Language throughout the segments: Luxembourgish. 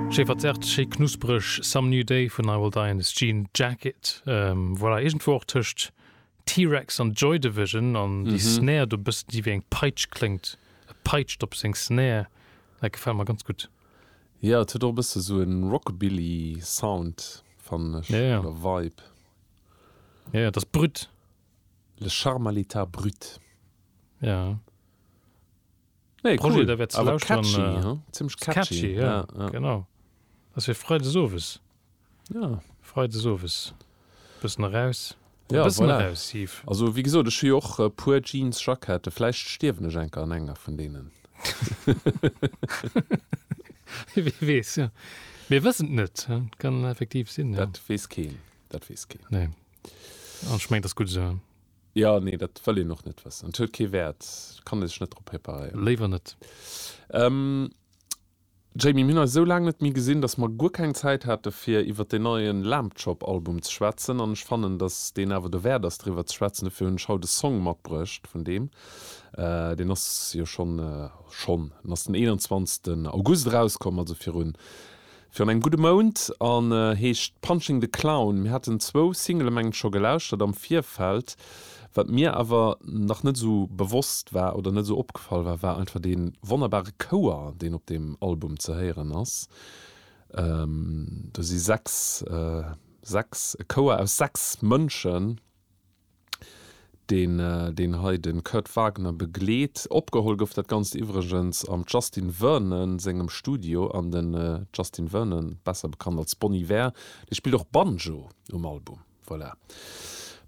Schéi verzerrt, schéi knuspereg, Some New Day vun I Will Die in This Jean Jacket. Voilà, iergendwou och tëscht T-Rex an Joy Division. An déi Snare do, e bëssen déi wéi eng Peitsch kléngt, e peitscht op seng Snare, dat gefält mer ganz gutt. Jo, et huet och e bësse sou e Rockabilly Sound, fannen ech, oder Vibe. Jo, jo, et ass brut. Le charme à l'état brut. Jo. Nee, Projet, cool. der wäert ze Awer lauschteren. catchy, Äh, hm? Zimmlech catchy. catchy, ja, Ja, ja. genau. Ass fir Freides owes. Ja. Freides owes bëssen eraus. Ja, bëssen voilà. eraus, Yves. Also, wéi gesot, ech hu jo och e puer Jeans-Jackette. Vläicht stierwen ech enker an enger vun deenen. Wie weess, ja. Mir wëssen et net. ja. Kann effektiv sinn, ja. Dat weess keen. Dat weess keen. Nee. An ech mengen, dat ass gutt esou. Jo, nee, dat wëll een och net wëssen. Et huet kee Wäert, et kann ee sech net drop preparéieren. Léiwer net. Jamie, mir hunn eis esou laang net méi gesinn, datt mer guer keng Zäit hate fir iwwer deen neie Lambchop-Album ze schwätzen. An ech fannen, datt deen awer derwäert ass driwwer ze schwätzen. Dofir hunn ech haut e Song matbruecht vun deem. Deen ass jo schonn, schonn, en ass den 21 August erauskomm, also virun Fir an engem gudde Mount an heescht Punching the Clown. Mir haten zwou Singele mengen ech scho gelauschtert am Virfeld. Wat mir awer nach net esou bewosst war oder net esou opgefall war, war einfach dee wonnerbare Chouer deen op deem Album ze héieren ass. Do si sechs, sechs, e Chouer aus sechs Mënschen. deen deen hei de Kurt Wagner begleet. Opgeholl gouf dat Ganzt iwwregens am Justin Vernon sengem Studio an den Justin Vernon, besser bekannt als Bon Iver, dee spillt och Banjo um Album. Voilà.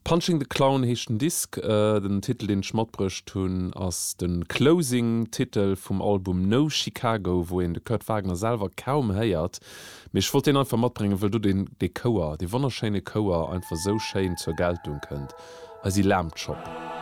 Punching the Clown heescht den Disk. Den Titel deen ech matbruecht hunn ass de Closing Titel vum Album No Chicago, wou een de Kurt Wagner selwer kaum héiert. Mee ech wollt deen einfach matbréngen, wëll do deen, dee Chouer, dee wonnerschéine Chouer einfach esou schéin zur Geltung kënnt, Eisi Lamb Chop.